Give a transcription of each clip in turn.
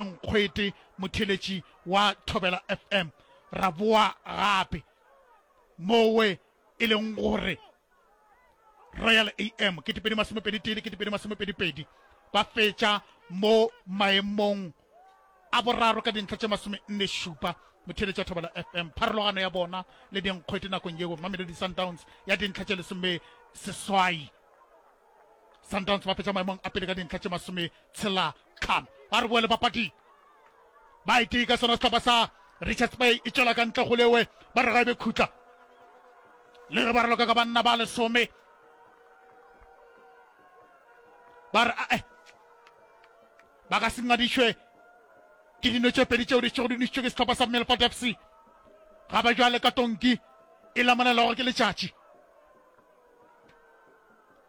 nkgwete motheletši wa Thobela FM, ra boa gape mowe e leng gore Royal AM kete pedi masome pedi tee le kete pedi masome pedi pedi ba fetša mo maemong a boraro ka dintlha tše masome nne šupa motheletša Thobela FM pharologano ya bona le dinkgwete nakong yeo Mamelodi Sundowns ya dintlha tše lesome seswai Sundowns ba fetša maemong a pele ka dintlha tše masome tshela Tlhano, ba re boele papading. Ba e tee ka sona sehlopha sa Richards Bay e tšwela ka ntle go lewe ba re ga e be khutla. Le ge ba re loka ka banna ba lesome ba re ae ba ka se ngadišwe ke dino tše pedi tšeo di šego di nišitšwe ke sehlopha sa Milford FC ga ba jwale ka tonki e lamonelwago ke letšatši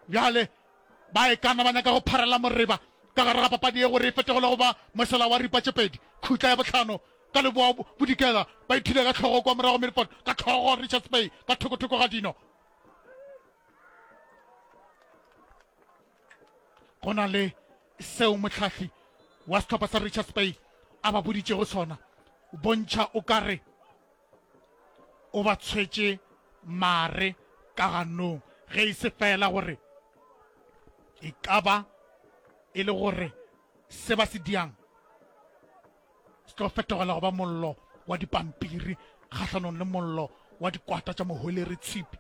bjale Ba e ka na ba nyaka go pharela moreba ka gare ga papadi ye gore e fetogele go ba mosela wa ripa tše pedi. Khutla ya bohlano ka leboa bodikela ba ithule ka hlogo kwa morago Milford ka hlogo, Richards Bay ka thokothoko ga dino. Go na le seo mohlahli wa sehlopha sa Richards Bay a ba boditšego sona, bontšha o ka re, o ba tshwetše mare ka ganong, ge e se feela gore e ka ba e le gore se ba se diang se tlo fetogela go ba mollo wa dipampiri kgahlanong le mollo wa dikwata tša mohweleretshipi.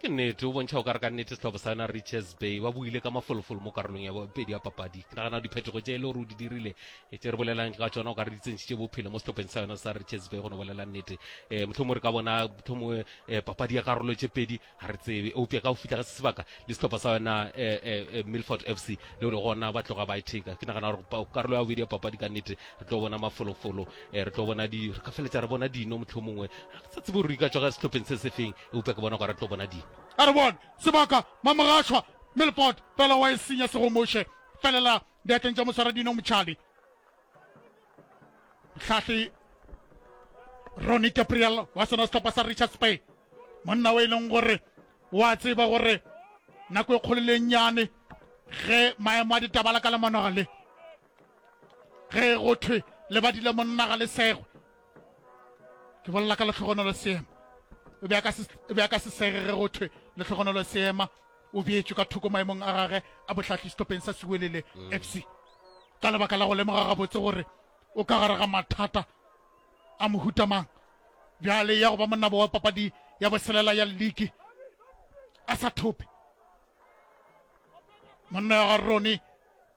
ke nnete o bontšha o ka re ka nnete setlhopho sa yona riches bay ba buile ka mafolofolo mo karolong ya bobedi ya papadi ke nagana diphetogo tse e le gore o di dirile e tse re bolelang ka tsona o ka re di tsentšitše bophelo mo setlhopheng sa yona sa riches bay go no bolela nnete um motlhomo re ka bona motlhomo um eh, papadi ya karolo tse pedi ga re tsebe eupša ka go fitlha ga se sebaka le setlhopho sa yona eh, milford f c le le gona ba tloga ba e theka ke nagana gore karolo ya bobedi ya papadi ka nnete re tlo bona mafolofolo e re tlo bona di re ka feletsa re bona dino mohlomongwe ga ke sa tsebe gore di ka tswa ka sehlopheng se sefeng eupša ke bona gore re tlo bona dino a re bona sebaka mamogashwa melpot fela wa e senya segomoše felela diatleng tša moswara dino motšhali tlhahli roni gabriel wa sona sehlopha sa richards bay monna o e leng gore wa tseba gore nako e kgolo le nnyane ge maemo a ditabala ka lemonoga le ge go thwe lebadi le monna ga le segwe ke bolela ka letlhogonolo seema o be a ka se sege ge go thwe letlhogonolo seema o beetswe ka thoko maemong a gage a botlhatlhi setopeng sa sewelele mm. f c ka lebaka la go lemoga gabotse gore o ka gare ga mathata a mohutamang bjale ya go ba monnabo wa papadi ya boselela ya league a sa thope monna ya ga rone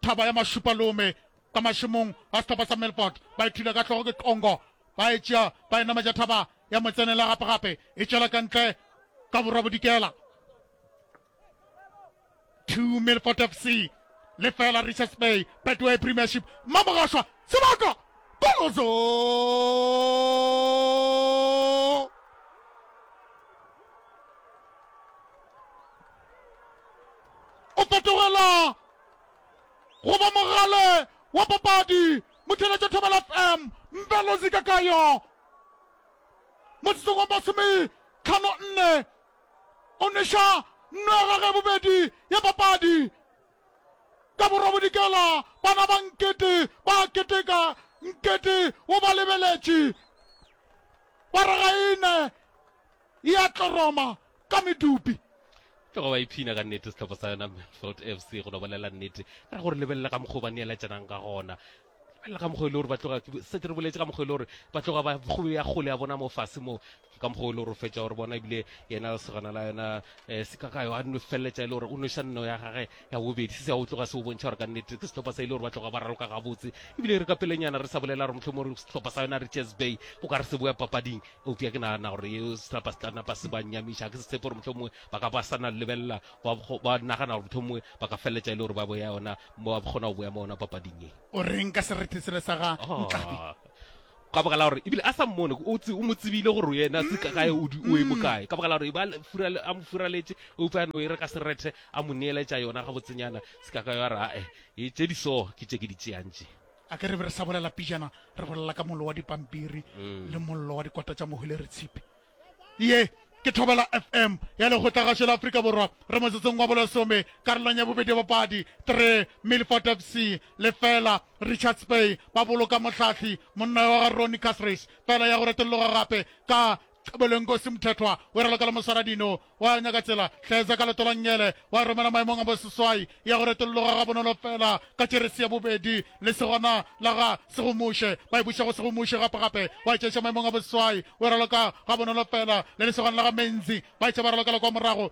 Thaba ya mašupalome ka mašemong a sehlopha sa Millport ba e thula ka hlogo ke Qongo ba e tšea ba e nametša thaba ya motsenela gape gape e tšwela ka ntle ka borwa bodikela. Two Millport FC le fela Richards Bay Betway Premiership Mmamogašwa sebaka Kolozo o fetogela Goba mogale wa papadi Motšheletšo Thobela FM Mpelozi Kakayo Motsotsong wa masome tlhano nne O nweša nno ya gage bobedi ya papadi Ka borobodikela bana ba Nkete ba a keteka Nkete o ba lebeletše Ba re ga e ne ya tloroma ka medupi ke go ba iphina ka nnete setlhopha sa yona melfeld f c go no bolela nnete ka gore lebelela ka mokgwa o ba neeletsanang ka gona lebelela ka mokgwa e le gore ba tloga setse re boletse ka mokgwa e le gore ba tloga ba go ya gole ya bona mo fase mo ka mokgwa e le gore o fetsa gore bona ebile yena segana la yona um eh, sekakayo a no feleletsa e le gore o noša nno ya gage ya bobedi se se o tloga se o bontšha gore ka nnete ke setlhopha sa e le gore ba tloga ba raloka gabotse ebile re ka pelenyana re sa bolela gore motlhomore setlhopha sa yona richards bay o ka re se boya papading Eupša ke nagana gore yeo senapa se tla napa se ba nyamiša. Ke se tshepe gore mohlomongwe ba ka ba sa na lebelela, ba kgo- ba nagana gore mohlomongwe ba ka feletša e le gore ba boya yona, ba kgona go boya mo yona papading ye. O reng ka serete sela sa ga Ntladi? Ah, ka baka la gore ebile a sa mmone o, tse, o mo tsebile gore yena se ka gae o, di- o e bokae ka baka la gore e ba le- furale- a mo furaletše eupša a no e re ka serethe a mo neeletša yona gabotsenyana se ka ka ya ra e tše di so ke tše ke di tšeang tše a ke re be re sa bolela pijana re bolela ka mollo wa dipampiri le mollo wa dikota tša mohwele re tshipe ye ke thobela fm ya lekgotlagasho la aforika borwa re motsotsong wa bolesome karolong ya bobedi bopadi three milfort fc lefela richards bay ba boloka mohlahli monna wa ga roni casrace fela ya go retologa gape ka Boleng Kosi Mthethwa o e ralokela Moswaradino, wa nyaka tsela, hlaetsa ka leto la Nngele, wa e romela maemong a boseswai, ya go retolloga gabonolo feela ka Jeresi ya bobedi, le segona la ga Segomuše, ba e buša go Segomuše gape gape, wa e tšeiša maemong a boseswai, o e raloka gabonolo feela, le lesogana la ga Menzi, ba etša ba ralokela kwa morago.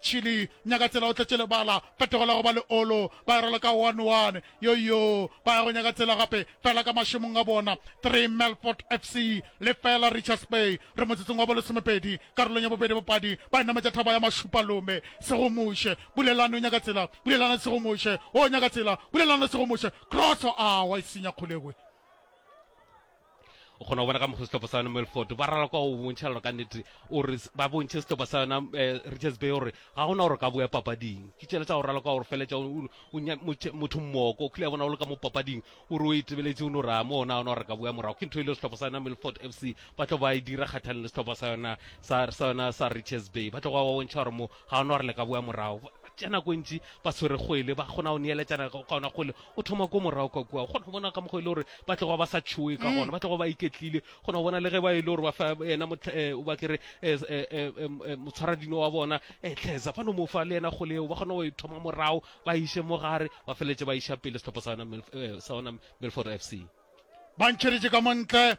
Chile, nyaka tsela o tletše lebala, phetogo la go ba leolo, ba e raloka one one, yoyo, ba ya go nyaka tsela gape, fela ka mašemong a bona, three Melfort FC, lefela Richards Bay, re motsotsong wa bolesomepedi, karolong ya bobedi bapadi ba e nametša thaba ya Mašupalome, Segomoše, Bulelani o nyaka tsela, Bulelani Segomoše, o nyaka tsela, Bulelani Segomoše, cross, awa e senya Kgolekwe. o kgona go bona ka mokgwa setlhopha sa yona melford ba ralwa kwa go bontšha lona ka nnete ore ba bontšhe setlhopha sa yona eh, richards bay gore ga gona gore ka boya papading ke tšela tsa go ralwa kwa gore feletša motho mmoko o kile ya bona o le ka mo papading o re o itebeletse o no raya mo ona ona gore ka boya morago ke ntho e le setlhopha sa yona melford f c ba tlo ba e dira kgathalelo setlhopha sa yona sa yona sa richards bay ba tlo go ba bontšha gore mo ga ona gore le ka boa morago tša nako e ntši ba swere kgwele ba kgona go neeletšana ka ona kgwele o thoma ko morago ka kua kgona go bona ka mokgwa e le gore ba tlogo ba sa tšhoe ka gona ba tlogo ba iketlile kgona go bona le ge ba e le gore ba fa ena eh, o ba kere eh, eh, motshwaradino wa bona tlhesa fa no mo fa le ena kgole eo ba kgona go e thoma morago ba iše mo gare ba feletse ba iša pele setlhopha sa ona milford f c ba ntšheditše ka montle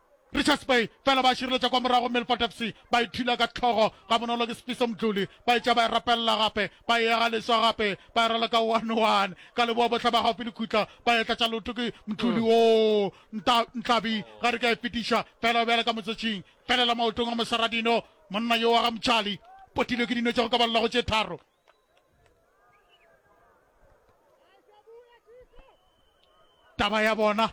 Richards Bay fela ba šireletša kwa morago Milford FC ba e thula ka hlogo gabonolo ke Sifiso Mdluli ba etša ba e rapelela gape ba e ega leswa gape ba e raloka one one ka leboa bohle ba gaufi le khutla ba e tlatša leoto ke Mdluli woo nta Nhlabi ga re ka e fetiša fela o bjale ka motsotšing felela maotong a Mosaradino monna yo wa ga Mtšali potilwe ke dino tša go ka balelago tše tharo taba ya bona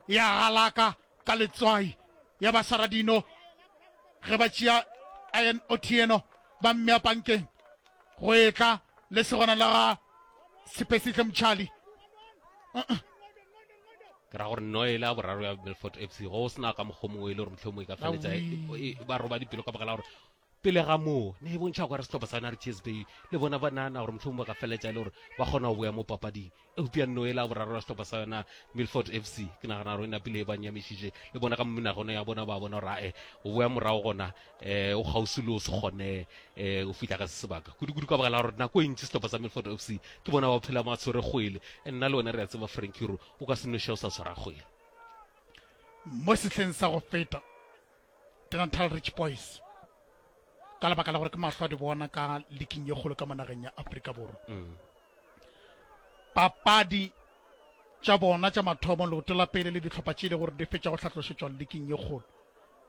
ya galaka ka letswai ya basaradino ge ba tšea ian otieno ba mmea pankeng go etla le segona la ga sepesihle motšhali ke ra gore no ele a boraro ya belfort f c go o sena ka mokgwa mongwe e le gore motlhomongwe e ka feletsa e- e- ba roba dipelo ka baka la gore Pele ga moo, ne e bontšha gore sehlopha sa Narthies Bay le bona ba nahana gore mohlomong ba ka feletša e le gore ba kgona go boya mo papading. Eupša nno yela ya boraro ya sehlopha sa yona Milford FC, ke nagana gore e napile e ba nyamišitše. Le bona ka menaganong ya bona ba bona gore ae, go boya morago gona um go kgauswi le go se kgone um go fihla ka se sebaka. Kudu-kudu ka baka la gore nako e ntši sehlopha sa Milford FC ke bona ba phela ba tshwere kgwele. Nna le wena re a tseba Frankie gore o ka se noše o sa tshwara kgwele. Mo sehleng sa go feta, Denatal Rich Boys ka lebaka la gore ke mahlo a di bona ka liking ye kgolo ka monageng ya Afrika Borwa mm. papadi tša bona tša mathomo leoto la pele le ditlhopha tše e le gore di fetša go hlatlošetšwa liking ye kgolo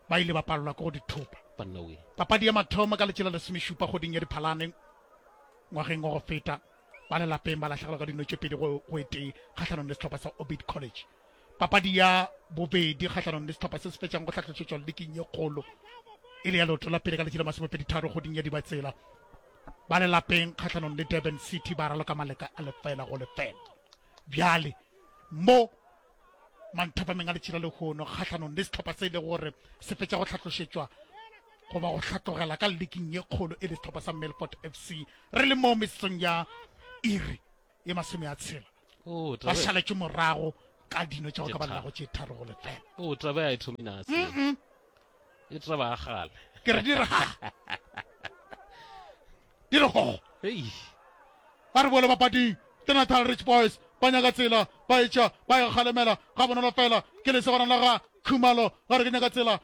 ba ile ba palelwa ke go di thupa papadi ya mathomo ka letše la lesomešupa goding ya diphalane ngwageng wa go feta ba lelapeng ba latlhegelwa ka dino tše pedi go etee kgatlhanong le setlhopha sa orbit college Papadi ya bobedi kgahlanong le sehlopha se se fetšang go hlahlošetšwa liking ye kgolo e le ya leoto la pele ka letši la masomepedi tharo goding ya Dibatsela. Ba le lapeng kgahlanong le Durban City ba raloka maleka a lefela go lefela. Bjale mo manthapameng a letšila lehono kgahlanong le sehlopha se e le gore se fetša go tlhatlošetšwa goba go hlatlogela ka liking ye kgolo e le sehlopha sa Melfort FC re le mo mesong ya iri ye masome a tshela oh, ba šaletše morago ka dino tša go ka balelago tše tharo go lefela o oh, taba ya e thome nase e taba ya gale ke re dire ga dire gogo ba re bole bapading ke natal rich boys ba nyaka tsela ba etša ba e kgalemela ga bonolo fela ke lesegwana la ga khumalo ga re ke nyaka tsela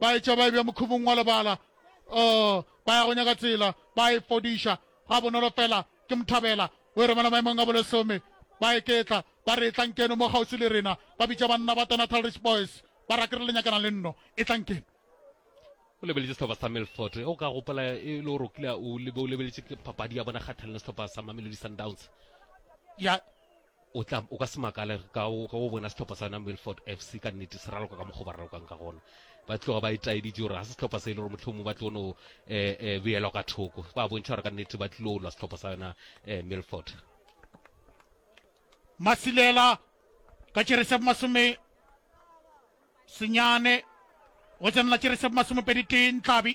ba etša ba e bja mokhumong wa lebala, oh, ba ya go nyaka tsela, ba e fodiša, ga bonolo fela, ke mothabela, o e romela maemong a bolesome, ba e ketla, ba re etlankeno mo kgauswi le rena, ba bitša banna ba Tonatal Rich Boys, ba ra ke re le nyakana le nno, etlankeno. O lebeletše sehlopha sa Milford, o ka gopola e le gore o kile o lebeletše papadi ya bona kgathalelo sehlopha sa Mamelodi Sundowns. Ya, O tla, o ka se makale ka go, ka go bona sehlopha sa yona Milford FC ka nnete se raloka ka mokgwa o ba ralokang ka gona. Ba tloga ba itaeditše gore ga se sehlopha se e le gore mohlomongwe ba tlo no eh, eh, beelwa ka thoko. Ba bontšha gore ka nnete ba tlilo lwa sehlopha sa yona eh, Milford. Masilela ka tšere se masome senyane go tsenela tšere se masomepedi tee ntlabi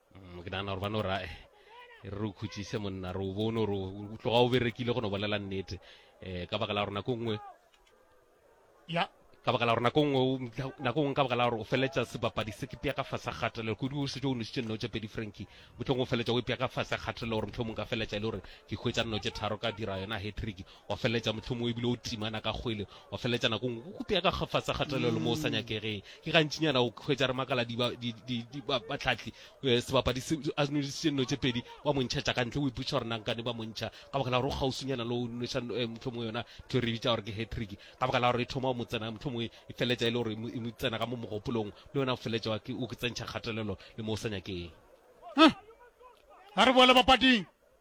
mm, ke nagana gore ba no ra re o khutsise monna re o bone gore o tloga o berekile go no bolela nnete um ka baka la gore nako nngwe ya ka baka la gore nako nngwe nako nngwe ka baka la gore o feletsa sebapadi se ke pea ka fase kgatelelo kodi o setse o nositse nno tse pedi franki motlhong o feletsa o ipea ka fase kgatelelo gore motlhong mong ka feletsa e le gore ke hwetsa nno tse tharo ka dira yona hetrick Wa feleletša mohlomongwe ebile o timana ka kgwele, wa feleletša nako nngwe o kutega ka kgafatsa kgatelelo mo o sa nyakegeng. Ke gantšinyana o hwetša re makala di ba- di- di- di- ba- batlhatli eh, sebapadi se a nwešitše nno tše pedi wa mo ntšhetša ka ntle, o ipotšiša gore nankane ba mo ntšha ka baka la gore o kgauswinyana le go nweša eh, mohlomongwe yona ntho e re e bitša gore ke hatrick ka baka la gore e thoma go mo tsena mohlomongwe e feleletša e le gore e mo- e mo tsena ka mo mogopolong le wena o feleletša wa ke- o ke tsentšha kgatelelo le mo o sa nyakeng Huh! a re boele bapading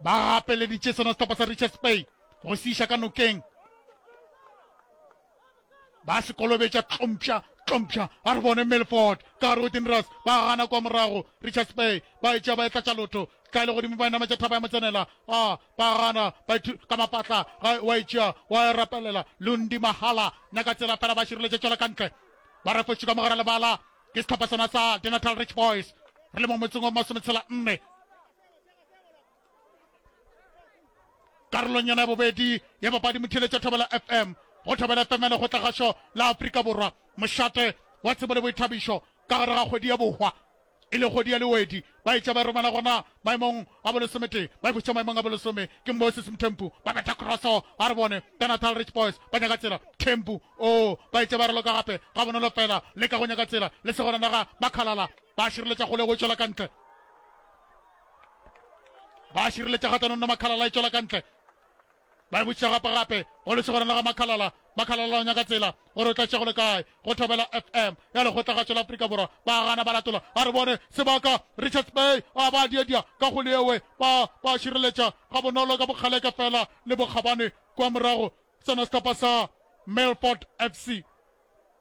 Ba gapeleditše sona sehlopha sa Richards Bay go se iša ka nokeng. Ba se kolobetša tlompša tlompša a re bone Milford ka gare go Dinras ba gana kwa morago Richards Bay ba etša ba etlatša lotho tla le godimo ba e nametša thaba ya motsenela a ba gana ba ka mapatla wa etšea wa e rapelela Lundi Mahala na ka tsela fela ba šireletša tšwela ka ntle ba refotše ka mogara lebala ke sehlopha sona sa Denatal Rich Boys re le mo motseng wa masometshela nne karolonyana ya bobedi ya papadi motheletša thobela fm go thobela fm ya lekgotlagašo la afrika borwa mošate wa tsebo le boithabišo ka gare ga kgwedi ya bohwa e le kgodi ya lewedi ba etša ba romela gona maemong a bolesomete ba ikhutša maemong a bolesome ke moses mthempu ba betha crosso a re bone ka natal rich boys ba nyaka tsela thempu o oh, ba etša ba raloka gape ga bonolo fela le ka go nyaka tsela le segona naga ba khalala ba šireletša kgole go tšwela ka ntle ba šireletša kgatlhanong na makhalala e tšwela ka ntle ba e botšiša gape gape go lesegoreng la ga makhalala makhalala o nyaka tsela gore o tlatše go le kae go thobela fm ya lekgotlagatšo la aforika borwa ba gana ba latola a re bone sebaka richards bay a ba diadia ka go leewe ba ba šireletša ga bonolo ka bokgaleke fela le bokgabane kwa morago sena setlhopha sa melford fc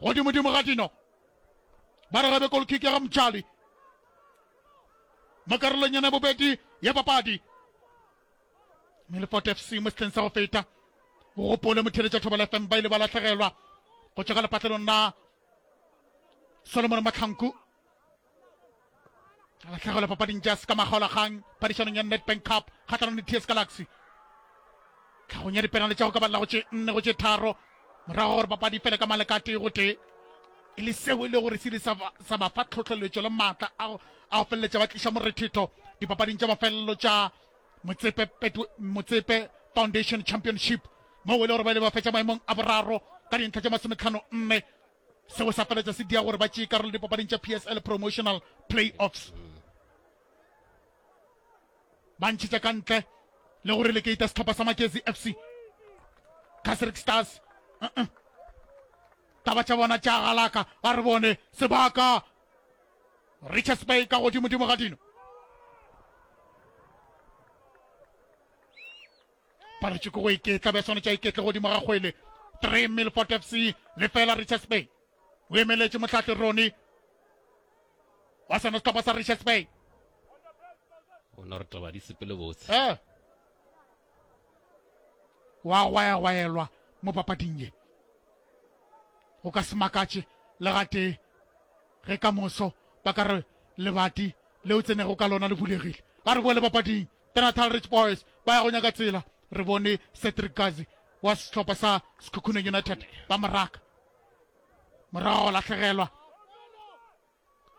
Godimodimo ga dino, ba re ge be golkick ya ga Mtshali mo karolong yena bobedi ya papadi. Melfort FC mo setleng sa go feta o gopole motheletša Thobela FM ba ile ba lahlegelwa go tšwa ka lepatlelong la Solomon Mahlanku. a latlhegelwa papading tša se ka makgaolagang phadišanong ya nedbank cup kgatlhanong le ts galaxy tlhagong ya dipenale tša go ka balela go tše nne go tše tharo morago gore papadi fele ka maleka a tee go tee e le seo e le gore se ile sa ba fa tlhotlheletšo le maatla a go feleletša ba tliša morethetho dipapading tša mafelelo tša motsepe foundation championship moo e le gore ba ile ba fetša maemong a boraro ka dintlha tša masometlhano nne Seo sa feletša se dia gore ba tšee karolo dipapading tša PSL Promotional Playoffs. Ba ntšhetša ka ntle le go relegata setlhopha sa Magezi FC. Casric Stars. Uh -uh. Taba tša bona tša galaka a re bone sebaka Richards Bay ka godimo-dimo ga dino. paletswe ke go iketla be swanetša iketle godimo ga kgwele 3 milfort fc le fela richards bay o emeletše motlhahle rone wa sena setlhopha sa richards bay o ne re taba di sepele botse eh. wa gwaegwaelwa mo papading ye o ka se makatše le gatee ge ka moso ba ka re lebati le o tsenego ka lona le bulegile ba re boe le papading The Natal Rich Boys ba ya go nyaka tsela, re bone Cedric Kazi wa sehlopha sa Sekhukhuneng United ba mo raka. Morago go lahlegelwa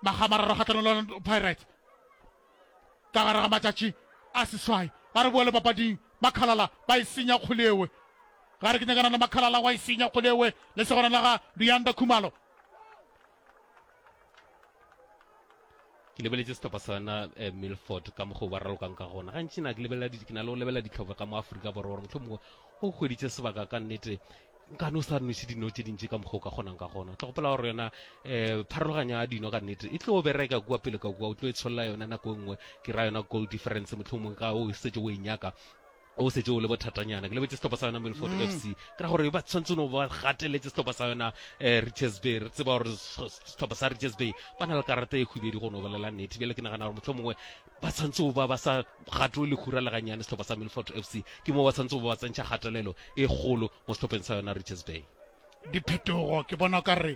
magamararo kgatlhanong le Orlando Pirates ka gare ga matšatši a seswai. Ga re boele papading, Makhalala ba e senya kgole ewe. Ga re ke nyakana le Makhalala wa e senya kgole ewe, lesogana la ga Luyanda Khumalo. ke lebeletse setlhopha sa yona um eh, milford ka mokgwa ba ralokang ka gona gantši na ke lebelela ke na le go lebelela ditlhopha ka mo aforika borwa gore motlho mongwe o kgweditse sebaka ka nnete nkane o sa nnoše dino tse dintši ka mokgwa o ka kgonang ka gona tlo gopela gore yona um pharologanya ya dino ka nnete e tlo bereka kua pele ka kua o tlo e tsholola yona nako e nngwe ke ra yona goal difference motlho mongwe ka o setse o e nyaka O šetše o le bothatanyana. Ke lebetše sehlopha sa yona Milford FC. Ke ra gore ba tshwanetse no ba gateletse sehlopha sa yona eh, Richards Bay. Re tseba gore sehlopha sa Richards Bay ba na le karata e khubedu go no bolela nnete. Bjale ke nagana gore mohlho mongwe ba tshwanetse ba ba sa gatwe lekhura le ganyane sehlopha sa Milford FC. Ke moo ba tshwanetse ba ba tsentšha kgatelelo e kgolo mo sehlopheng sa yona Richards Bay. diphetogo ke bona o ka re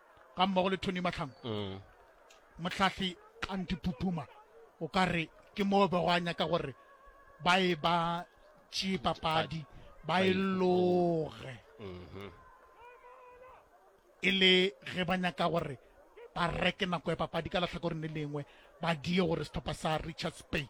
ga mmogo le tony mahlangu mm. motlhahli kanti pupuma o ka re ke moo be go a nyaka gore ba e ba tšee papadi ba e loge mm-hmm. e le ge ba nyaka gore ba reke nako ya papadi ka latlhakoreng le lengwe ba die gore setlhopha sa richards bay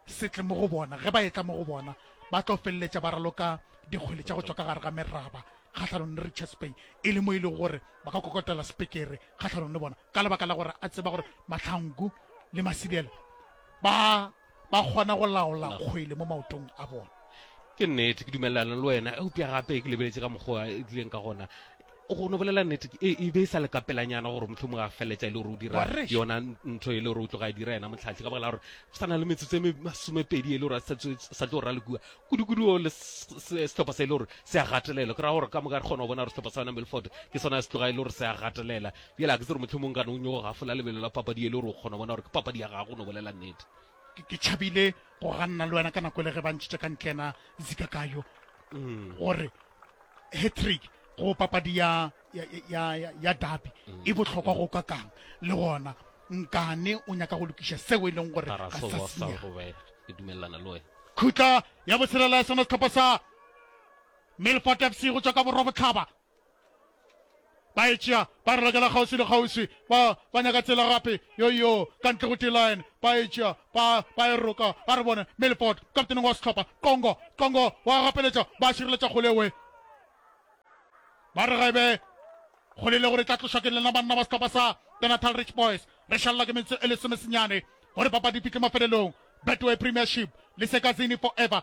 se tle mo go bona, ge ba etla mo go bona, ba tlo feleletša ba raloka dikgwele tša go tšwa ka gare ga meraba kgahlanong le Richards Bay, e le mo e lego gore ba ka kokotela sepekere kgahlanong le bona, ka lebaka la gore a tseba gore Mahlangu le Masilela ba ba kgona go laola kgwele mo maotong a bona. Ke nnete, ke dumelelana le wena, eupša gape ke lebeletše ka mokgwa e tlileng ka gona. Go no bolela nnete, e, e be e sa le ka pelanyana gore mohlomongwe a feleletša e le gore o dira yona ntho e le gore o tloga a dira yena mohlahli, ka baka la gore go sa na le metsotso e me masomepedi e le gore a sa tlo ralokua kudu-kudu o le sehlopha se e le gore se a gatelela. Ke ra gore ka moka re kgona go bona gore sehlopha sa yona Milford ke sona se tloga e le gore se a gatelela. Bjale a ke tsere mohlomongwe gane o nyogo gafola lebelo la papadi e le gore o kgona go bona gore ke papadi ya gago, go no bolela nnete. Ke, ke tšhabile go ganna le wena ka nako e le ge ba ntšhitše ka ntle yena Zikakayo, gore hat-trick go papadi ya, ya, ya, ya, ya dabi mm. e bohlokwa go ka kang le gona nkane o nyaka go lokiša seo e leng gore ga sa senya khutla ya botshelela ya sona setlhopha sa melfort fc go tswa ka borwa botlhaba Ba e tšea, ba re lokela kgauswi le kgauswi. Ba, ba nyaka tsela gape, yoyoo, ka ntle go T-line. Ba e tšea, ba, ba e roka. A re bone, Milford, kapteneng wa sehlopha, Qongo, Qongo, wa gapeletša, ba šireletša kgole e wee. Ba re ga e be kgole e le gore e tla tlošwa ke lena banna ba sehlopha sa The Natal Rich Boys. Re šalela ke metsotso e lesomesenyane gore papadi e fihle mafelelong. Betway Premiership le Sekazini Forever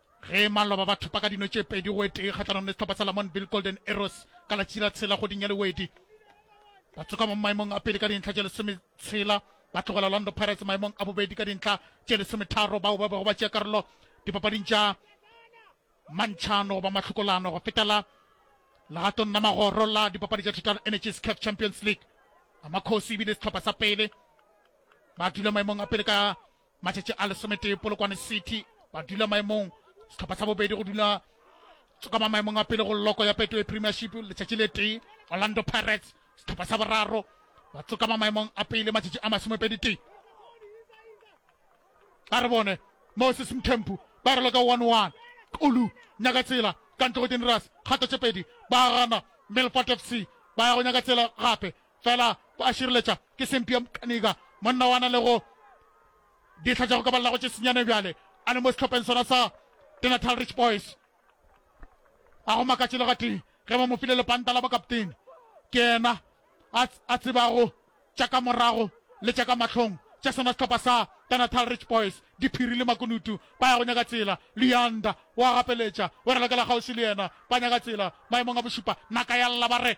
Ge maloba ba thopa ka dino tše pedi go etee kgahlanong le sehlopha sa Lamontville Golden Arrows ka la tšila tshela kgweding ya Lewedi, ba tsoka mo maemong a pele ka dintlha tše lesome tshela ba tlogela Orlando Pirates maemong a bobedi ka dintlha tše lesome tharo bao ba bego ba tšea karolo dipapading tša mantšhano goba mahlokolano go fetela legatong la magoro la dipapadi tša Total Energies CAF Champions League. Amakhosi e bile sehlopha sa pele ba dula maemong a pele ka Matšatši a lesometee Polokwane City ba dula maemong sehlopha sa bobedi go dula tsokama maemong a pele go loko ya Betway Premiership letšatši le tee Orlando Pirates sehlopha sa boraro ba tsokama maemong a pele matšatši a masomepedi tee a re bone Moses Mthempu ba re loka 1-1 Kulu nyaka tsela ka ntle go Dinras kgato tše pedi ba gana Milford FC ba ya go nyaka tsela gape fela ko a šireletša ke sempi ya mokaniga monna wa na le go dihla tša go kabalelago tše senyane bjale a le mo sehlopheng sona sa denatal rich boys a go makatše le gatee ge ba mo file lepanta la bokaptene ke ena a tsebago tša ka morago le tša ka mahlong tša sona sehlopha sa denatal rich boys diphiri le makunutu ba ya go nyaka tsela leanda wa gapeletša o re lokela kgauswi le yena ba nyaka tsela maemong a bošupa naka ya lla ba re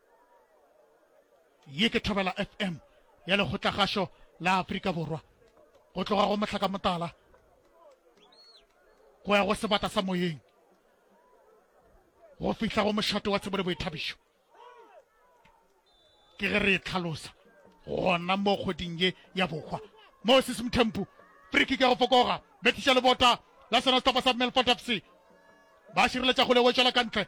Ye ke Thobela FM ya Lekgotlagašo la Afrika Borwa, go tloga go mohlakamotala go ya go sebata sa moyeng, go fihla go mošate wa tsebo le boithabišo. Ke ge re e tlhalosa gona mo kgweding ye ya bohwa mo sesimthempu friki ka go fokoga betliša lebota la sona setopa sa melford fc ba šireletša go lewetšwela ka ntle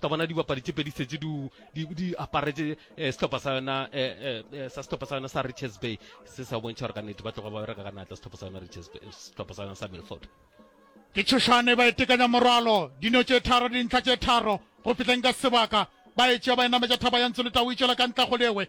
ka bona dibapadi tše pedi setse di aparetse eh, sehlopha sa yona eh, eh, sa sehlopha sa yona sa richards bay se sa bontšha gore ka nnete ba tloga ba bereka ka natla sehlopha sa yona richards bay sehlopha sa yona sa milford ke tšhošane ba etekanya morwalo dino tše tharo dintlha tše tharo go fihleng ka sebaka ba etšea ba enametša thaba ya ntsho le tau e tšwela ka ntla go lewe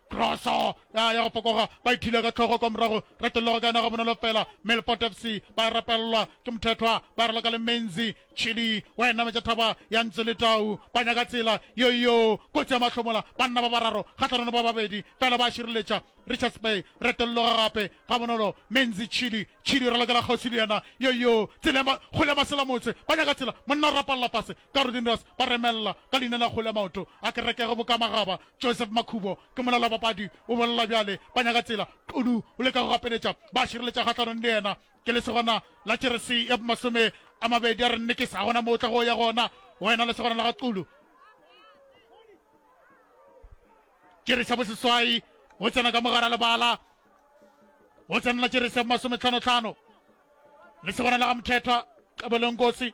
Kroso ya ya go fokoga ba ithile ka tlhogo kwa morago retelelo go ka yona ga bonolo fela Melport FC ba rapelelwa ke mothethwa ba re loka le menzi chili wa ena metša thaba ya ntse le tau ba nyaka tsela yoyo kotsi ya mahlomola banna ba bararo kgatlhanano ba babedi fela ba šireletša Richards Bay retelelo ga gape ga bonolo menzi chili chili re lokela kgosi le yena yoyo tsela ya ma- kgole ya masela motse ba nyaka tsela monna o rapalela fase Ka re Dinders ba remelela ka leina la kgole ya maoto a kereke go boka magaba. Joseph Makhubo ke molala wa papadi o bolela bjale, ba nyaka tsela Xulu o leka go gapeletša ba a šireletša kgahlanong le yena. Ke lesogana la jeresi ya masome a mabedi a re nnekisa gona mo o tlago o ya gona wena lesogana la ga Xulu. Jeresi ya boseswai o tsena ka mogara lebala o tsenela jeresi ya masometlhano tlhano lesogana la ga Mthethwa Xebelonkosi.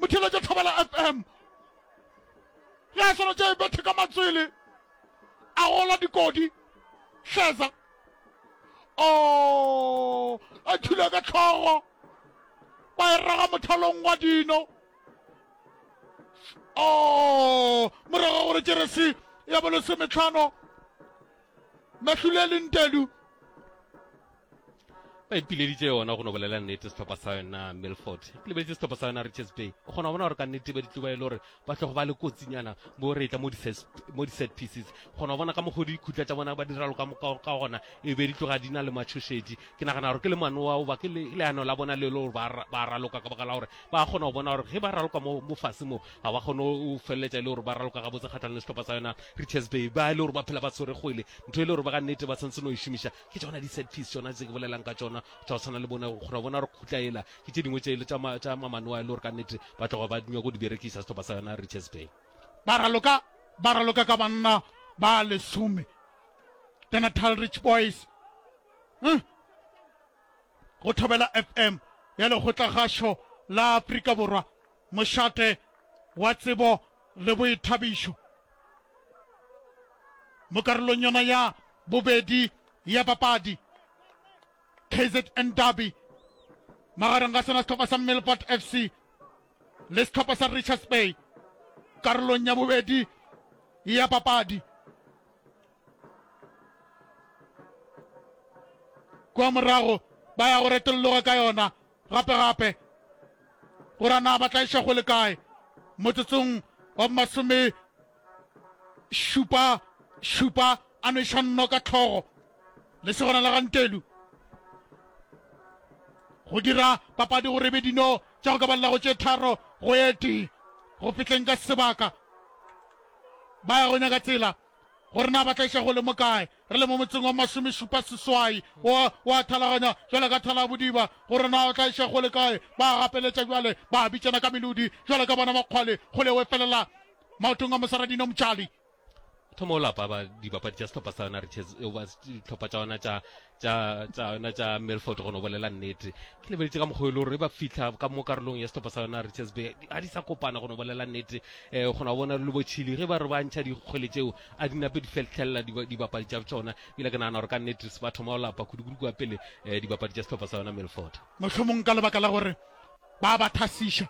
Motšhelo ke tlhobela FM. Ge a swana tše bethe ka matswele a gola dikodi hleza o a thula ka tlhogo ba e raga mothalong wa dino o morago gore jeresi ya bolosemetlhano mahlulelintelu ba ipileditše yona go no bolela nnete sehlopha sa yona milford ke lebeletse sehlopha sa yona richards bay o kgona go bona gore ka nnete ba ditluba e le gore ba tlogo ba le kotsinyana bo re tla mo di-set pieces kgona go bona ka mokgodi dikhutla tša bona ba diralo ka moka ka gona e be di tloga di na le matshošedi ke nagana gore ke le manoa oba ke leano la bona le le gore ba raloka ka baka la gore ba kgona go bona gore ge ba raloka mo fase mo ga ba kgone go feleletša e le gore ba raloka gabotse kgatlhang le sehlopha sa yona richards bay ba e le gore ba phela ba tshwere kgwele ntho e le gore ba ka nnete ba tshwanetse no e šomiša Ke tšona di set piece tšona tse ke bolelang ka tšona tša go tshwana le bona gore bona re khutla ela ke tše dingwe tše tša ma, tša mamanoa e le gore ka nnete ba tloga ba nyako di berekisa setlopa sa yona Richards Bay. Ba raloka ba raloka ka banna ba lesome the Natal Rich Boys huh? go Thobela FM ya lekgotlagašo la Afrika Borwa mošate wa tsebo le boithabišo mo karolong yona ya bobedi ya papadi. KZN Derby magareng ga sona sehlopha sa Millport FC le sehlopha sa Richards Bay karolong ya bobedi ya papadi. Kwa morago ba ya go retolloga ka yona gape-gape gore na ba tla iša go le kae motsotsong wa masome Šupa, Šupa a nweša Nnoka hlogo, lesogana la ga Ntelu. Go dira papadi go rebe dino tša go ka balela go tše tharo go ye tee go fihleng ka sebaka. Ba ya go nyaka tsela gore na ba tla iša gole mo kae. Re le mo motseng wa masomešupa seswai wa, wa thalaganya jwale ka thala bodiba gore na o tla iša gole kae. Ba gapeletša jwale, ba bitšana ka melodi jwale ka bona makgwale, kgole we felela maotong a mosaradino motšali thomo o lapa ba dibapadi tša sehlopha sa yona riches ba dihlopha tša yona tša tša tša yona tša melford go no bolela nnete ke lebeletse ka mokgwa e le gore ba fitlha ka mo karolong ya sehlopha sa yona riches bay ga di sa kopana go no bolela nnete um go na bona le botšhili ge ba re ba ntšha dikgwele tšeo a di nape di fetlhelela dibapadi tša tsona ebile ke nagana gore ka nnete ba thoma go lapa kudukudu kwa pele um dibapadi tša sehlopha sa yona melford mohlomong ka lebaka la gore ba ba thasiša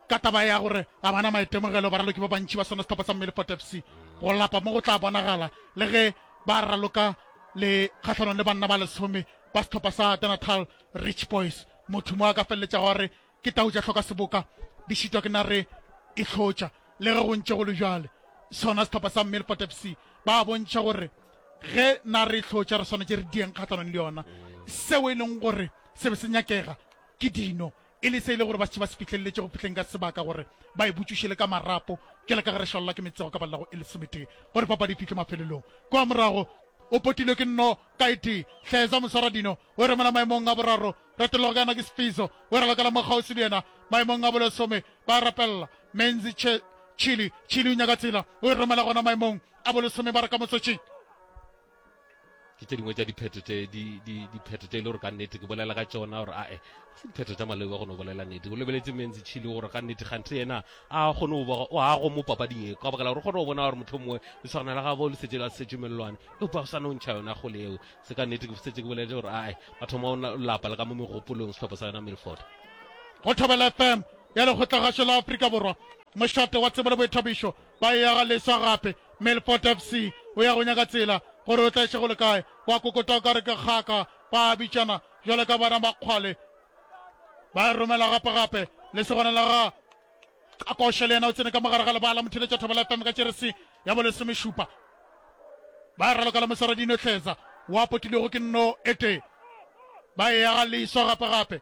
ka taba ya gore ga bana maitemogelo baraloki ba bantši ba sona sehlopha sa Millford FC go lapa mo go tla bonagala le ge ba raloka le kgahlanong le banna ba lesome ba sehlopha sa The Natal Rich Boys motho mo a ka feleletša gore ke tau tša hloka seboka di šitwa ke nare e hlotša le ge go ntše go le bjale sona sehlopha sa Millford FC ba bontšha gore ge na re hlotša re swanetse re dieng kgatlhanong le yona seo e leng gore se be se nyakega ke dino E le se e le gore ba se ba se fihlelletše go fihleng ka sebaka gore ba e butšuše le ka marapo, bjale ka ge re šalelwa ke metsego ka balla go e lesometee gore papadi e fihle mafelelong. Kwa morago o potilwe ke Nno Kaitee, Hleza Moswaradino o e romela maemong a boraro, Retellogo yena ke Sfiso o e ralokela mo kgauswi le yena maemong a bolesome, ba e rapella Menzi Che Chili, Chili o nyaka tsela o e romela gona maemong a bolesome ba re ka motsotšing. ke tše dingwe tša diphetho tše diphetho tše e le gore ka nnete ke bolela ka tšona gore ae se diphetho tša maleo ba kgone go bolela nnete o lebeletse menzi chile gore ka nnete gante yena a kgone go boga o ago mo papading e ka bakela gore kgone go bona gore motlho mongwe le tshwana la gabo le setse la setse mellwane e ba sa no ntšha yona go leo se ka nnete ke setse ke boleletse gore ae batho mo lapa le ka mo megopolong setlhopha sa yona milford go thobela fm ya lekgotlagašo la aforika borwa mošate wa tsebo le boithabišo Ba eya ga leswa gape. Melfort FC o ya go nyaka tsela gore o tlaiše go le kae. Wa kokota o ka re ke kgaka. Ba a bitšana bjale ka bana ba kgwale. Ba e romela gape gape. Lesogana la ga Kakoshe le yena o tsene ka mogare ga lebala. Motheletša Thobela FM ka jeresi ya bolesomešupa. Ba e raloka le mosara Dino Tleza. Wa potilwego ke Nno Etee. Ba eya ga leswa gape gape.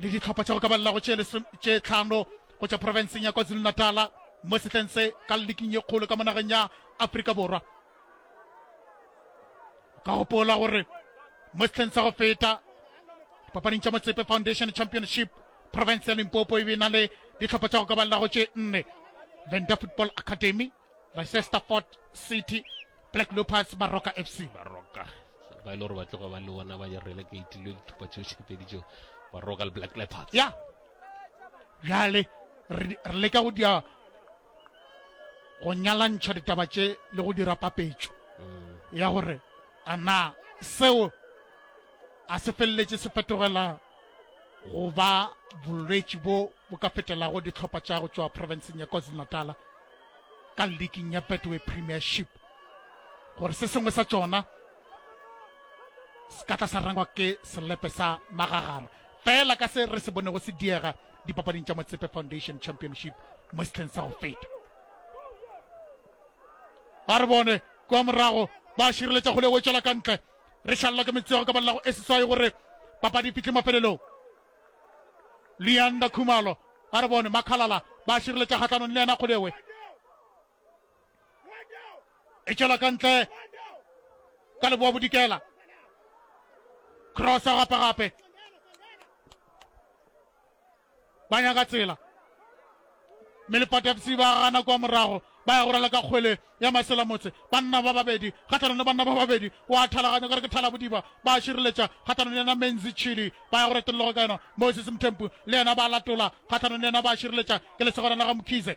le dihlopha tša go ka balelago tše tlhano go tša profenseng ya kwazulu-natala mo sehleng se ka leking ye kgolo ka monageng ya aforika borwa ka gopola gore mo sehleng sa go feta papading tša motsepe foundation championship province ya limpopo e be na le dihlopha tša go ka balelago tše nne venda football academy Manchester Fort City, Black Leopards, Baroka FC. Baroka ba ile gore ba tloga ba le bona ba jarele ka itilwe dithupa tšeo tšhepedi tšeo Baroka le Black Leopards. Ya bjale re leka go dia go nyalantšha ditaba tše le go dira papetšo mm. ya gore a na seo a se feleletše se fetogela go ba bolwetši bo bo ka fetelago dihlopha tša go tšwa profenseng ya KwaZulu-Natal ka liking ya Betway Premiership gore se sengwe sa tšona se ka tla sa rangwa ke selepe sa magagana fela ka se re se bonego se diega dipapading tša motsepe foundation championship mo sehleng sa go feta ba re bone kwa morago ba šireletša kgole go tšwela ka ntle re šalelwa ke metsego ka balelago e seswai gore papadi e fitlhe mafelelong leanda khumalo a re bone makhalala ba a šireletša kgatlhanong le yena kgodewe e tšwela ka ntle ka leboa bodikela crossa gape gape ba nyaka tsela, mme lepatatsi ba gana kwa morago, ba ya go rala ka kgwele ya masela motse. Banna ba babedi kgathanong le banna ba babedi wa thalaganya kare ke thalabodiba, ba šireletša kgathanong le yena Menzi Chili, ba ya go retologa ka yena. Moses Mthembu le yena ba latola kgathanong le yena, ba šireletša ke lesogana la ga Mkhize.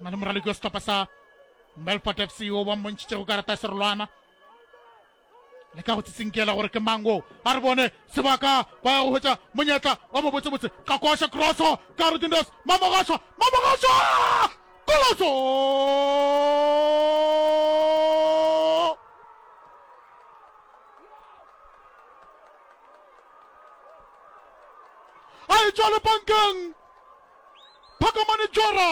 na le moraloki wa setlhopha sa melfort fc o ba mmontšhitšego karata ya serolwana le ka go tsitsinkela gore ke mang o a re bone sebaka ba ya go hwetša monyetla wa mobotsebotse ka koša crosso ka rodindos mamogašwa mamogašwa koloso a e tšwa lepankeng Phakamani Jora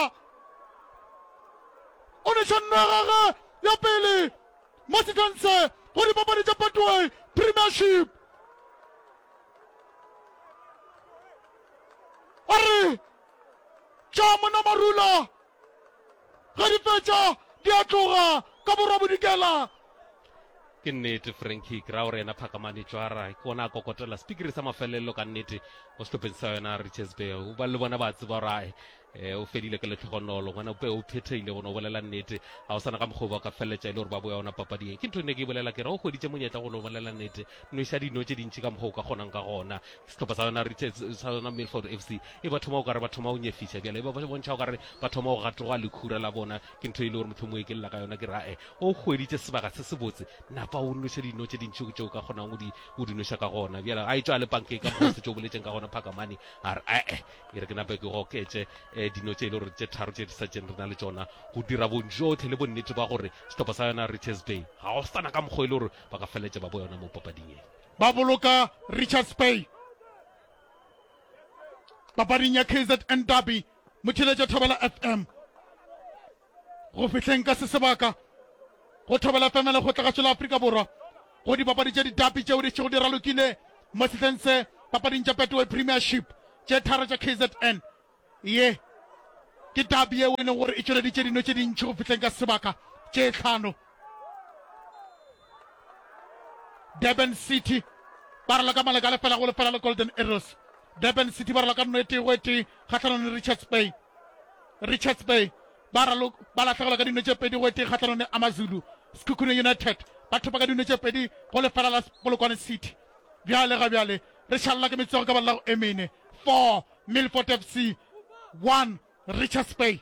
o neša nno ya gage ya pele mo Sithense go dipapadi tša Betway Premiership. A re tša mona marula ge di fetša di a tloga ka borwa bodikela. ke nnete franki kry-a gore yena phakamane tšwara ke ona a kokotela sepikiri sa mafelelo ka nnete mo sehlopheng sa yona riches bay ba le bona ba tseba gore eh, o fedile ke letlhogonolo ngwana pe o phethegile gone o bolela nnete ga o sana ka mokgwa ba ka feleletša e le gore ba boya ona papading ke ntho e ne ke e bolela ke re o hweditše monyetla gone o bolela nnete noša dino tše dintši ka mokgwa o ka kgonang ka gona sehlopha sa yona riches sa yona milford f c e ba thoma o kare ba thoma o nyefiša bjale e ba bontšha o kare ba thoma go gatoga lekhura la bona Ke ntho e le gore mohlomong e ke lela ka yona ke ra e o hweditše sebaka se se botse napa o nnoša dino tše dintši tšeo ka kgonang o di o di noša ka gona bjale a e tšwa le pankeng ka mose tšeo boletseng ka gona phakamane a re ee e re ke nape ke goketše eh, dino tše e le gore tše tharo tše di sa tšeng re na le tšona go dira bonjotlhe le bonnete ba gore sehlopha sa yona richards bay ga go sana ka mokgwa e le gore ba ka feletša ba bo yona mo papading e ba boloka richards bay papading ya kzn derby motšheletša thobela fm go fihleng ka se sebaka go thobela fm le kgotlagatšo la afrika borwa go dipapadi tša ditapi tšeo di tšhego di ralokile mo sehleng se papading tša petway premiership tše tharo tša kzn ye ke tabi yeo e leng gore e tšweleditše dino tše dintšhi go fihleng ka sebaka tše tlhano Durban City ba rala ka maleka a lefela go lefela le Golden Arrows. Durban City ba rala ka nno e tee go e tee kgatlhanong le Richards Bay. Richards Bay ba ralo ba latlhegelwa ka dino tše pedi go e tee kgatlhanong le Amazulu. Sekhukhune United ba thopa ka dino tše pedi go lefela la Polokwane City. Bjale ga bjale re šalela ke metswego ka balago e mene. 4 Milford FC 1 Richards Bay.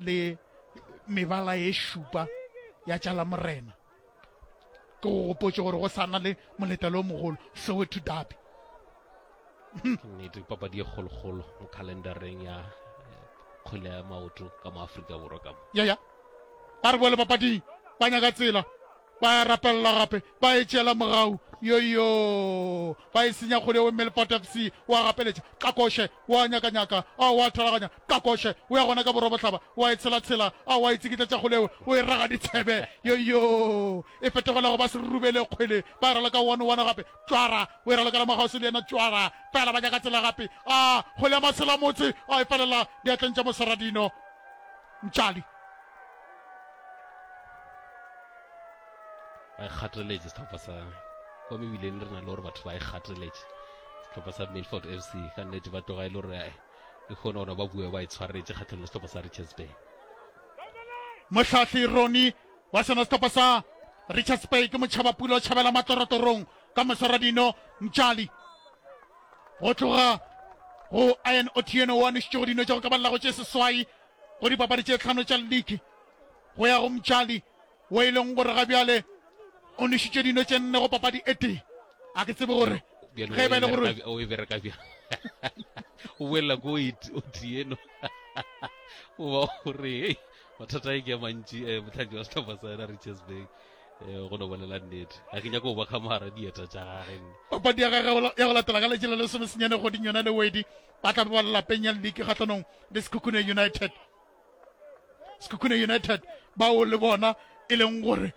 le mebala e šupa ya tša la morena ke go gopotse gore go sana le moletelo o mogolo soweto dabi nnete papadi e kgolokgolo mo calendareng ya eh, kgwele ya maoto ka mo aforika borwa ka mo ya ya ba re bole papading ba nyaka tsela Ba e rapelela gape, ba e tšeela mogau. Yoyo! Ba e senya kgole o mme lefata FC wa gapeletša, Qakoshe wa nyakanyaka, ao wa thalaganya, Qakoshe o ya gona ka borwa bohlaba, wa e tshelatshela, ao wa e tsikitletša kgole o o e raga ditšhebe. Yoyo! E fetogela go ba serurubele kgwele, ba e raloka one one gape, Tšwara o e ralokela Mogausi le yena Tšwara, fela ba nyaka tsela gape, a kgole ya Maselamotse a e felela diatleng tša Moseradino Mtšali. ba e kgateletše sehlopha sa kwa mebileng re na le gore batho ba e kgateletše sehlopha sa milford f c ka nnete ba tloga e le gore eh, e kgone gona ba bue ba e tshwaretše kgatlheng le sehlopha sa richards bay mohlahli roni wa sona sehlopha sa richards bay ke motšhaba pula o tšhabela matlorotorong ka moswaradino mtšali go tloga go ian otieno wa nošitšego dino tša go ka balelago tše seswai go dipapadi tše tlhano tša liki go ya go Mtšali wo e leng gore ga bjale o nwešitše dino tše nne go papadi e tee a ke tsebe gore ge e ba e le gore o e bereka bja o boelela ko o tieno o ba gore hei mathata e ke mantši um eh, motlhanki wa setlhopha sa yena riches bay um eh, go no bolela nnete ga ke nyako go ba kgamara dieta tša gage papadi ya gage ya go latela ka letsela le somesenyane goding yona le wedi ba tla ba lelapeng ya league kgahlanong le sekhukhune united sekhukhune united bao le bona e leng gore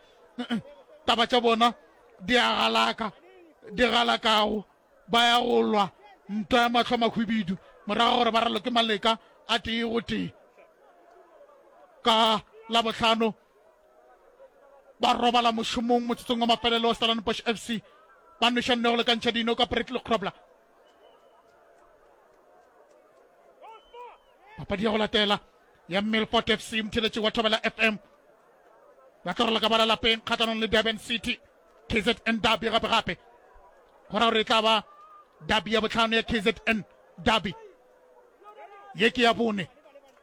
taba tša bona di a galaka di galakago ba ya go lwa ntwa ya matlho mahwibidu morago gore ba ralo ke maleka a tee go tee ka labotlhano ba robala mošomong motsotsong wa mafelelo wa stellan bosh f c ba nwešanne go lekantšha dino ka brittle crobler papadi ya go latela ya milfort fc motheletši wa thobela fm ba tlo rola ka bala lapeng kgatlanong le durban city kzn derby gape gape go ra gore e tla ba derby ya botlhano ya kzn derby ye ke ya bone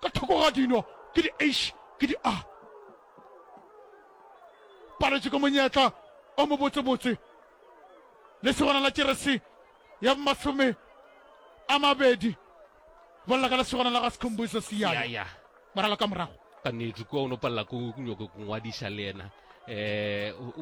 ka thoko ga dino ke di h ke di a paletše ka monyetla o mobotsebotse le segona la jeresi ya masome a mabedi bolla ka le segona la ga sekhombuso seyaya moralo ka morago ka nnete kua o no palela ko nyoko go ngwadiša le yena um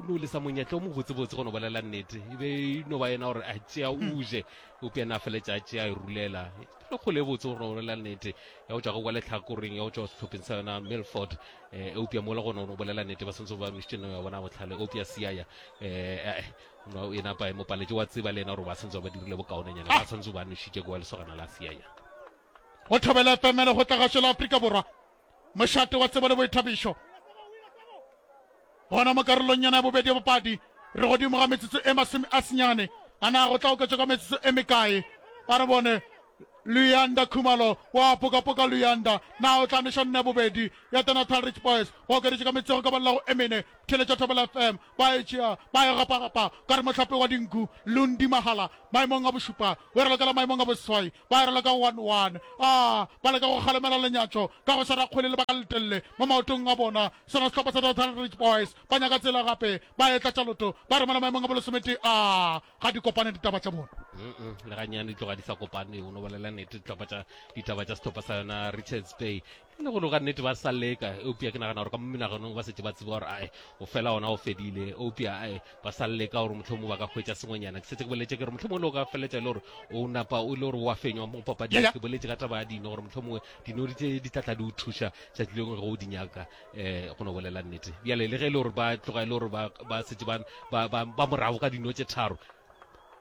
no le sa monyetla o mobotsebotse go no bolela nnete e be e no ba yena gore a tšea o je o pjana a feletša a tšea a e rulela le kgole e botse gore no bolela nnete ya go tšwa go kwa letlhakoreng ya go tšwa sehlopheng sa yona milford um eupja mola gona o no bolela nnete ba swantse ba mišitše no ya bona botlhale eupja siaya um e napa mo paletše wa tseba le yena gore ba swantse ba dirile bokaonenyana ba swantse ba nošitše kwa lesogana la siaya Go thobela efemere go tla gašo la Afrika Borwa, mošate wa tsebo le boithabišo. Gona mo karolong yona ya bobedi ya bopadi, re godimo ga metsotso e masome a senyane. A na go tla oketšwa ka metsotso e mekae? Ba re bone Luyanda Khumalo wa Apokapoka Luyanda na o tla neša nna ya bobedi ya The Natal Rich Boys. Go okeditše ka metsotso go ka balelago e mene, theeletša Thobela FM ba e tšea ba e gapagapa ka re mohlape wa dinku Lundi Mahala maemong a bošupa. O e ralokela maemong a boseswai, ba e raloka go one-one. A ba leka go kgalemela lenyatšo ka go swara kgwele lebaka le letelele mo maotong a bona. Sona sehlopha sa Dothan Ridge Boys ba nyaka tsela gape, ba e tlatša loto, ba romela maemong a bolesometee. A ga di kopane ditaba tša bona. Mm-mm, le gannyane di tloga di sa kopane. O no bolela nete, dihlopha tša ditaba tša sehlopha sa yona Richards Bay le go ka nnete ba sa leka eupša ke nagana gore ka mo menaganong ba setse ba tseba gore ae o fela ona o fedile eupša ae ba sa leka gore motlho mongwe ba ka hwetša sengwenyana ke setse ke boletse ke re motlho mongwe le o ka feletša e le gore o napa o le gore wa fenywa mo papadi ke boletse ka taba ya dino gore motlho mongwe dinori tse di tlatla di o thuša tšatši lengwe ge o di nyaka um go no bolela nnete bjale le ge e le gore ba tloga e le gore ba setse ba morago ka dino tše tharo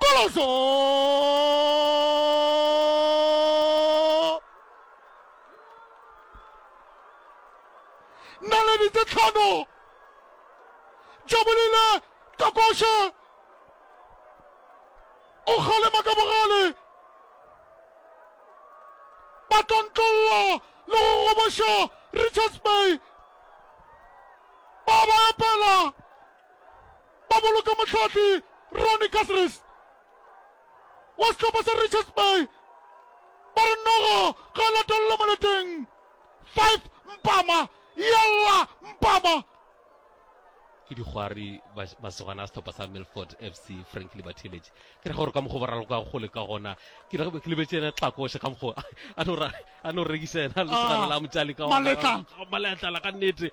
Koloso! Naledi tse tlhano Jabulile Kakoshe o kgalema ka bogale ba tlontlollo le go goboša Richards Bay ba ba epela Ba boloka mohlahli Ronnie Caceres wa sehlopha sa Richards Bay ba re Nogo ga a latelele moleteng. Five Mpama, yalla Mpama! ke dikgwari ba ba segwana sehlopha sa Milford FC Frank Libatheletše ke re gore ka mokgo ba raloka gole ka gona ke re ke lebetše ena tlakoše ka mokgo a no ra a no rekisa ena le tshwana la motšali ka maletla ka nnete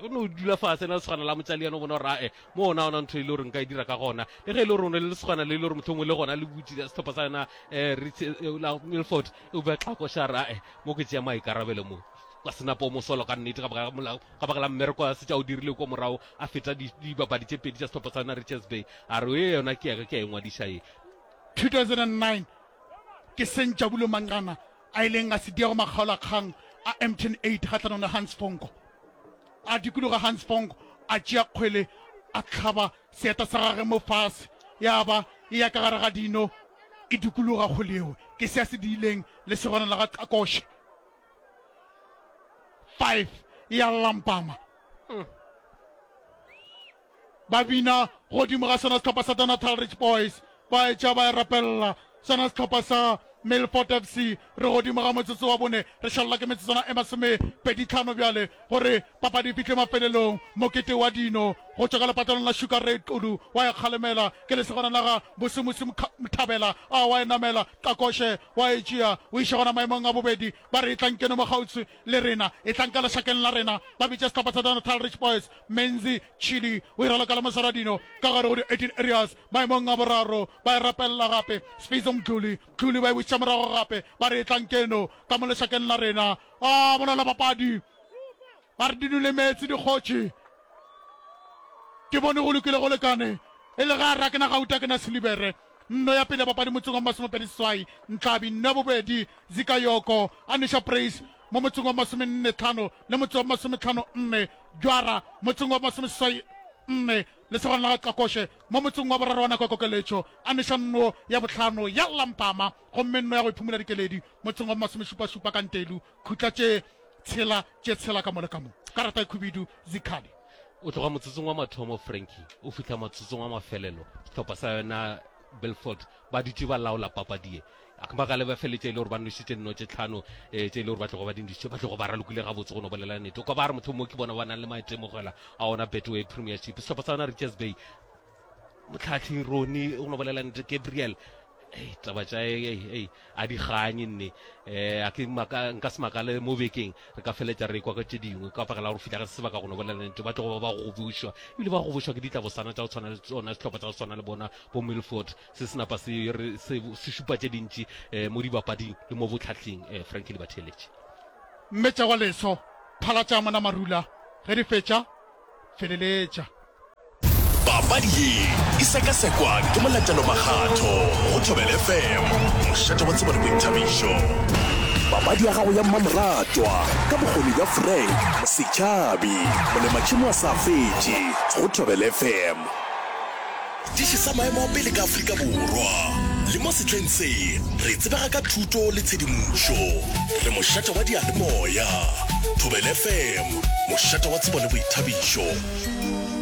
o no dula fase na le tshwana la motšali yana o bona gore ae mo ona ona ntho e le gore nka e dira ka gona le ge e le gore o ne le tshwana le e le gore motlhongwe le gona le butse setlhopha sa yona um milford e bua tlhakošara ae mo ke tšea maikarabelo mo ka senapo mo solo ka nnete ka baka la mmereko a setša o dirile ko morago a feta dibapadi tše pedi tša setlhopha sa yona richards bay a re e yona ke yaka ke ya engwadiša e 2009 Ke seng Jabulo Manqana a ileng a se diego makgaolakgang a Mtn Eight kgahlanong le Hans Fonko. A dikologa Hans Fonko, a tšea kgwele, a hlaba seeta sa gagwe mo fase, ya ba e ya ka gare ga dino e dikologa kgwele yeo. Ke se a se diileng lesogana la ga Qakoshe. Five, e a lampama. Ba bina godimo ga sona sehlopha sa Donatal Rich Boys, ba etša ba e rapelela. Sona sehlopha sa Milford FC, re godimo ga motsotso wa bone, re šalelwa ke metsotswana e masomepeditlhano bjale gore papadi e fihle mafelelong. Mokete wa dino go tšwa ka lepatlelong la Sugar Ray Xulu wa e kgalemela, ke lesogana la ga Bosimusi Mthabela a wa e namela, Qakoshe wa e tšea o iša gona maemong a bobedi, ba re e tlankeno mo kgauswi. Le rena, etlang ka lešakeng la rena. Ba bitše sehlopha sa Danatal Rich Boys, Menzi, Chili, o e raloka le Mosara Dino ka gare go di-18 areas maemong a boraro. Ba e rapelela gape, Sfizo Mdluli, Mdluli ba e bušetša morago gape, ba re etlang keno ka mo lešakeng la rena. Aa, bona labapadi ba re di nule meetse dikgotši. Ke bone go lokile go lekane, e le ge a re a ke na gauta, a ke na silibere. Nno ya pele ya bapadi motseng wa masomepedi seswai, Ntlhabi, nno ya bobedi Zika Yoko, Anisha Praise, mo motseng wa masomenne tlhano le motse wa masometlhano nne, Jwara, motseng wa masomeseswai nne, lesogana la ga Xakoshe, mo motseng wa boraro wa nako ya kokeletšo, Anisha nno ya bohlano ya lla mpama, gomme nno ya go iphumola dikeledi motseng wa masomešupašupa ka Ntelu. khutla tše tshela tše tshela ka mo le ka mo. Karata e khubidu, zikhali. O tloga motsotsong wa mathomo Frankie o fihla matsotsong wa mafelelo sehlopha sa yona Belfort ba dutše ba laola papadie akmagale ba feletše e le gore ba nošitše nno tše tlhano eh, tše e le gore ba tlogo ba dindišitše ba tlogo ba ralokile gabotse go no bolela nete o ka ba re mohlomongwe ke bona ba nang le maetemogela a ona betway premiership sehlopha sa yona richards bay motlhatlhi roni o no bolela nete gabriel ei taba tša ei a di ganye nne um a ke nka se makale mo bekeng re ka feletša re kwa ka tše dingwe ka pakela gore fitla ga se sebaka go no bolela nete ba tlogo ba ba gobošwa ebile ba gobošwa ke ditlabosana tša go tshwana le tsona sehlopha tsa go tshwana le bona bo milford se se napa se šupa tše dintši um mo dibapading le mo botlhatlhing um franki le batheeletše mmetša wa leso phala tša mona marula ge di fetša feleletša papadi ye e sekasekwa ke molatelo makgatho go thobel fm mošate wa tsebone boithabišo papadi ya gago ya mmamoratwa ka bokgoni bja frank mosetšhabi molematšhimo wa sa fetše go thobel fm diši sa maemo a pele ka aforika borwa le mo setleng se re tsebega ka thuto le tshedimošo re mošate wa dialemoya thobel fm mošate wa tsebo le boithabišo